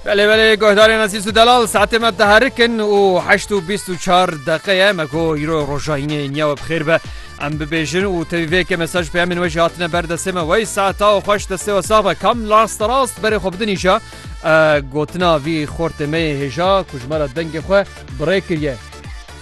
Belê belê guhdarên Azîz û Delal saetê me diherik in û heşt û bîst û çar deqeye me ku îro roja yînê niya we bixêr be em bibêjin û tevî vê yekê mesaj peyemên we jî hatine ber destê me wey saeta û xweş destê we sax be kam lasta rast berê xwe bidinîja gotina vî xortê me yê hêja ku ji me re dengê xwe birê kiriye.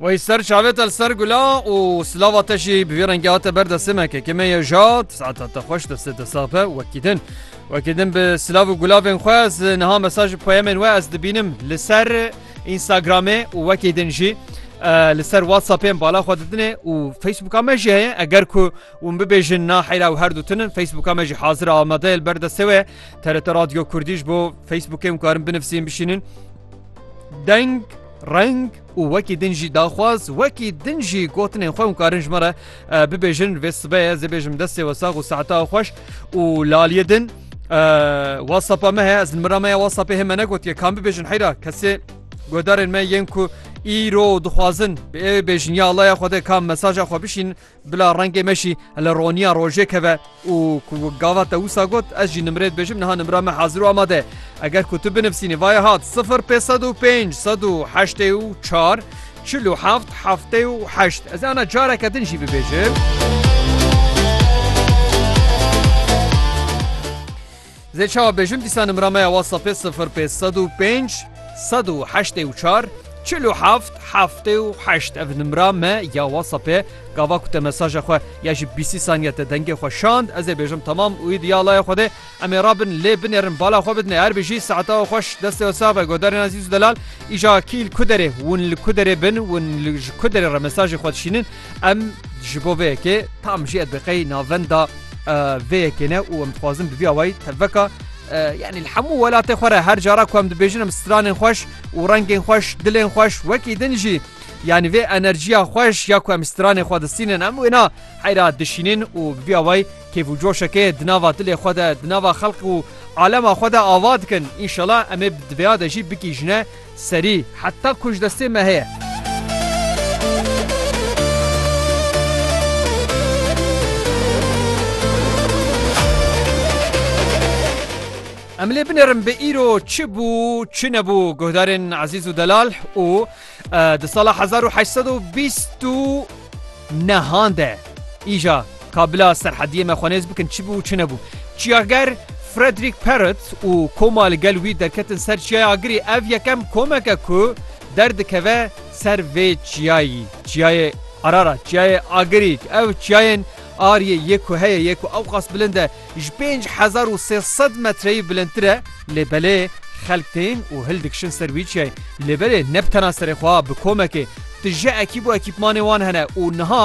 Wey ser çavêta li ser gula û silava te jî bi vî rengî hate ber destê me keke me ye jat saeta te xweş destê te sax be wekî din wekî din bi silav û gulavên xwe ez niha mesaj poyemên we ez dibînim li ser Instagramê û wekî din jî li ser WhatsAppên bala xwe didinê û Facebooka me jî heye eger ku hûn bibêjin na heyra û her dutinin Facebooka me jî hazir amadeyê li ber destê we TRT Radyo Kurdî ji bo Facebookê hûn karin binivsîn bişînin deng reng û wekî din jî daxwaz wekî din jî gotinên xwe hûn karin ji me re bibêjin vê sibeye zê bêjim destê we sax û saeta xweş û laliyê din WhatsAppa me heye ez mira me ya WhatsAppê hê me negotiye kam bibêjin heyra kesê guhdarên me yên ku îro dixwazin bi ê bêjin ya Allah ya xwedê kam mesaja xwe bişîn Bila rengê me jî li roniya rojê keve û ku gava te wisa got ez jî nimrê dibêjim niha nimra me hazir û amade ye. Eger ku tu binivîsînî vaya hat sifir pê sed û pênc sed û heştê û çar çil û heft heftê û heşt ez ê ana careke din jî bibêjim. Zê çawa bêjim dîsa nimra me ya WhatsAppê sifir pênc sed û pênc sed û heştê û çar çil û heft heftê û heşt ev nimra me ya WhatsAppê gava ku te mesaja xwe ya ji bîsî saniye te dengê xwe şand ez ê bêjim tamam û îd ya laya Xwedê em ê rabin lê binêrin bala xwe bidinê her bijî saeta we xweş destê we sax be godarên ezîz û delal îja kî li ku derê hûn li ku derê bin hûn li ji ku derê re mesajê xwe dişînin Em ji bo vê yekê tam jê bi qey navenda vê yekê ne û em dixwazin bi vî awayî tevveka yani li hemû welatê xwe re her cara ku em dibêjin em stranên xweş û rengên xweş dilên xweş wekî din jî yani vê enerjiya xweş ya ku em stranê xwe distînin em wêna heyra dişînin û bi vî awayî kêf û coşekê di nava dilê xwe de di nava xelq û alema xwe de ava dikin înşela em ê di vêya de jî bigîjine Serî, heta ku ji destê me heye. Em lê binêrin bi îro çi bû çi nebû guhdarên Ezîz û Delal û di sala hezar û heşt sed û bîst û Ne hande. Îja ka bila serhediyê me xwenêz bikin çi bû û çi nebû. Çiyager Frederick Parrot û koma li gel wî derketin ser Çiyaya Agirî ev yekem komek e ku derdikeve ser vê çiyayî. Çiyayê Ararat, Çiyayê Agirî ew çiyayên Aryê yê ku heye yê ku ewqas bilind e. ji pênc hezar û sê sed metreyî bilindtir e, lê belê xelk tên û hil dikişin ser wî çiyayê. Lê belê ne bi tena serê xwe, bi komekê tije ekîb û ekîpmanê wan hene û niha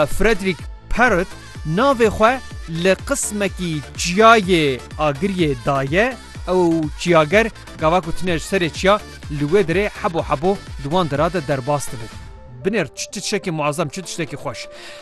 Frederick Parrot navê xwe li qismekî çiyayê Agiriyê daye, ew çiyager gava ku tune ji serê çiya li wê derê hebo hebo di wan dera de derbas dibin. Binêr çi tiştekî muezem, çi tiştekî xweş.